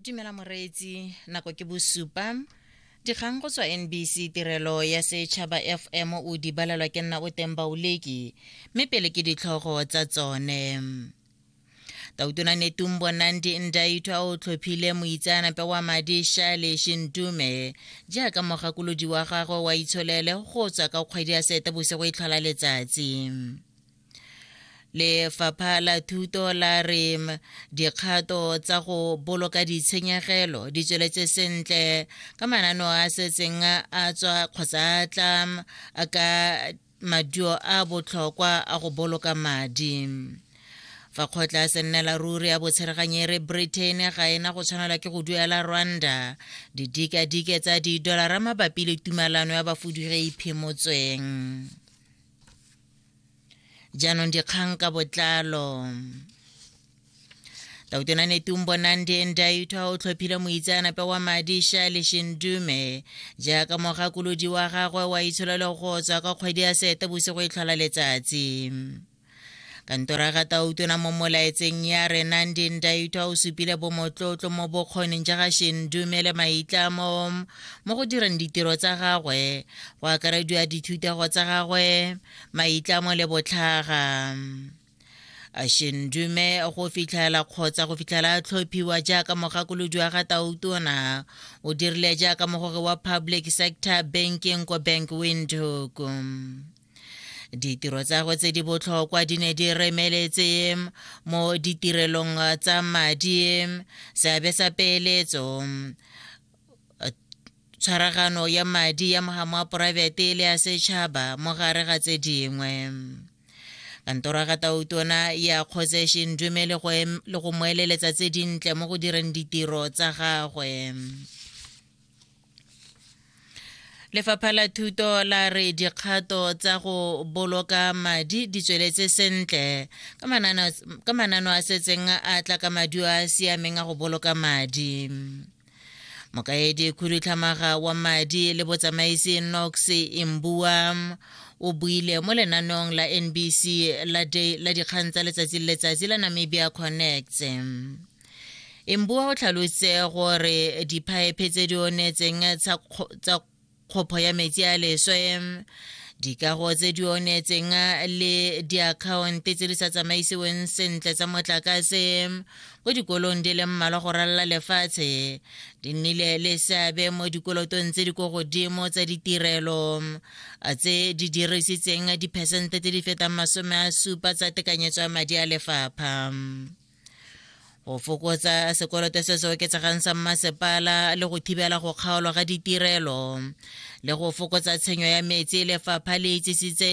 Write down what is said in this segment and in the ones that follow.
dumela moreetsi nako ke bosupa dikgang go tswa nbc tirelo ya setšhaba fm o di balelwa ke nna o teng baoleki mme pele ke ditlhogo tsa tsone tautona netumbo nandi ndaitho a o tlhophile moitseanape wa madi shale shintume jaaka mogakolodi wa gagwe wa itsholele go tswa ka kgwedi ya seetebosigo e tlhola letsatsi lefapha la thuto la re dikgato tsa go boloka ditshenyegelo di tsweletse sentle ka manano a setseng a tswa kgotsa a tla ka maduo a botlhokwa a go boloka madi fa kgotla se nne la ruri ya botshereganyere britain ga e na go tshwanelwa ke go duela rwanda didikadike tsa didolara mabapi le tumalano ya bafudugeiphimotsweng jaanong dikgang ka botlalo tautona netumbo nandi ndaitwa o tlhophile moitseanape wa madi shale shindume jaaka mogakolodi wa gagwe wa itsholelo go tswa ka kgwedi ya sete bosigo e tlhola letsatsi kantora ga tautona mo molaetseng ya re nandi ndaitwa o supile bomotlotlo mo bokgoning ja ga shindume le maitlamo mo go direng ditiro tsa gagwe go akarediwa dithutego tsa gagwe maitlamo le botlhaga ashendume go fitlhela kgotsa go fitlhela a tlhophiwa jaaka mogakolodi wa ga tautona o dirile jaaka mogore wa public sector banking ko bank windhoek ditiro tsa go tse di botlhokwa di ne di remeletse mo ditirelong tsa madi seabe sa peeletso tshwaragano ya madi ya mogamo wa poraefete le ya setšhaba mo gare ga tse dingwe kantoro ya gatautona ya kgotse shindume le go mo eleletsa tse dintle mo go direng ditiro tsa gagwe lefapha la thuto la re dikgato tsa go boloka madi di tsweletse sentle ka manano a setseng a tla ka maduo a a siameng a go boloka madi mokaedi khudutlhamaga wa madi le botsamaisi nox imbua o buile mo lenaneong la nbc la day la dikgang tsa letsatsi le letsatsi la namibia connects imbua o tlhalositse gore diphaephe tse di onetseng tsa kgopho ya metsi a leswe dikago tse di onetseng le diakhaonte tse di sa tsamaisiweng sentle tsa motlakase ko dikolong di le mmalwa go ralala lefatshe di nnile le seabe mo dikolotong tse di ko godimo tsa ditirelo tse di dirisitseng diphesente tse di fetang masome a supa tsa tekanyetso ya madi a lefapha go fokotsa sekoloto se se oketsegang sa mmasepala le go thibela go kgaolwa ga ditirelo le go fokotsa tshenyo ya metsi lefapha le itsisitse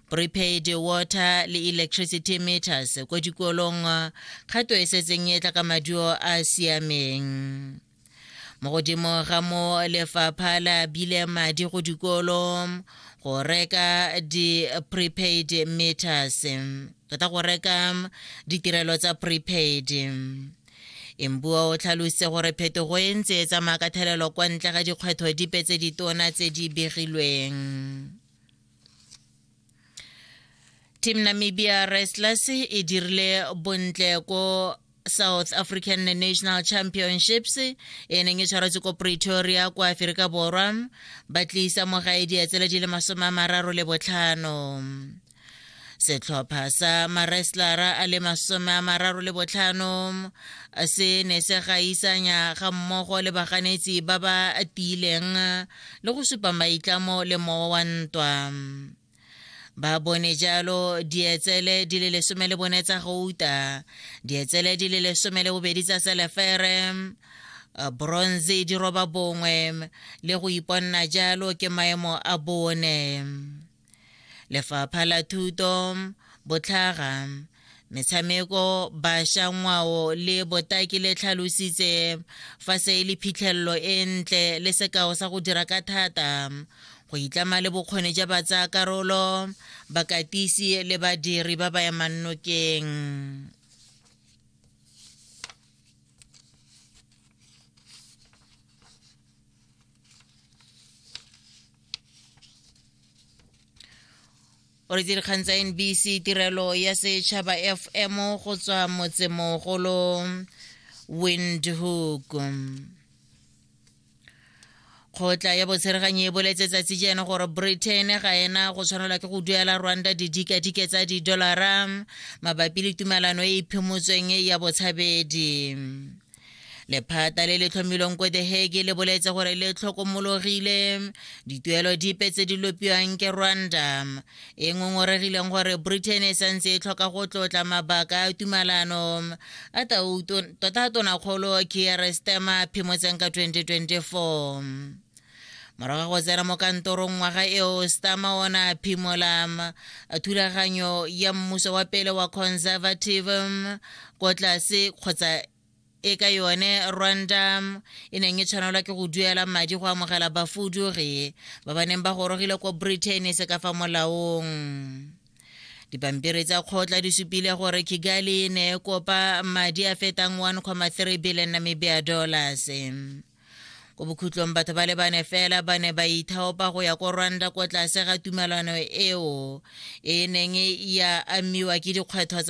prepaid water le electricity meters ko dikolong kgato e setseng e tla ka maduo a a siameng mo godimo ga mo lefapha la bile madi go dikolo go reka di-prepaid meters re tla go reka ditirelo tsa prepaid embua o tlhalositse gore phetogo e ntse e tsamaya ka thelelo kwa ntle ga dikgwetho dipe tse ditona tse di begilweng Team Namibia Wrestlers e dirile bontle ko South African National Championships e neng e tshwaretse ko Pretoria kwa Aferika Borwa ba tlisa mogae dietsele di le masome a mararo le botlhano setlhopha sa mareslara a le masome a mararo le botlhano se ne se gaisanya ga mmogo le baganetsi ba ba tiileng le go supa maitlamo le mowa wa ntwa ba bone jalo dietsele di le lesome le bone tsa gouta dietsele di le lesome le bobedi tsa selefere eh, bronze di roba bongwe le go iponna jalo ke maemo a bone lefapha la thuto botlhaga metshameko bašwa ngwao le botaki le tlhalositse fa se e le phitlhelelo e ntle le sekao sa go dira ka thata go itlama le bokgoni ja batsa karolo bakatisi le badiri ba ba emannokeng o re dikgang tsa nbc tirelo ya setšhaba fm go tswa motsemogolo windhoek kgotla ya botsheraganyi e boletse tsatsi jeno gore britain ga ena go tshwanelwa ke go duela rwanda didikadike tsa didolara mabapi le tumelano e e phimotsweng ya botshabedi lephata le le tlhomilweng ko the hege le boletse gore le tlhokomologile dituelo dipe tse di lopiwang ke rwanda e ngongoregileng gore britain e santse e tlhoka go tlotla mabaka a tumalano a tota tonakgolo kier stema phimotseng ka 2024 morago go tsena mo kantorong ngwaga eo stama o ne a phimola thulaganyo ya mmuso wa pele wa conservative ko tlase kgotsa e ka yone rwanda e neng e tshwanelwa ke go duela madi go amogela bafudugi ba ba neng ba gorogile ko britain se ka fa molaong dipampiri tsa kgotla di supile gore kigali ne e kopa madi a fetang 1,3 billion namibia dollars ko bokhutlong batho ba le bane fela ba ne ba ithaopa go ya ko rwanda ko tlase ga tumelano eo e neng ya amiwa ke dikgwetho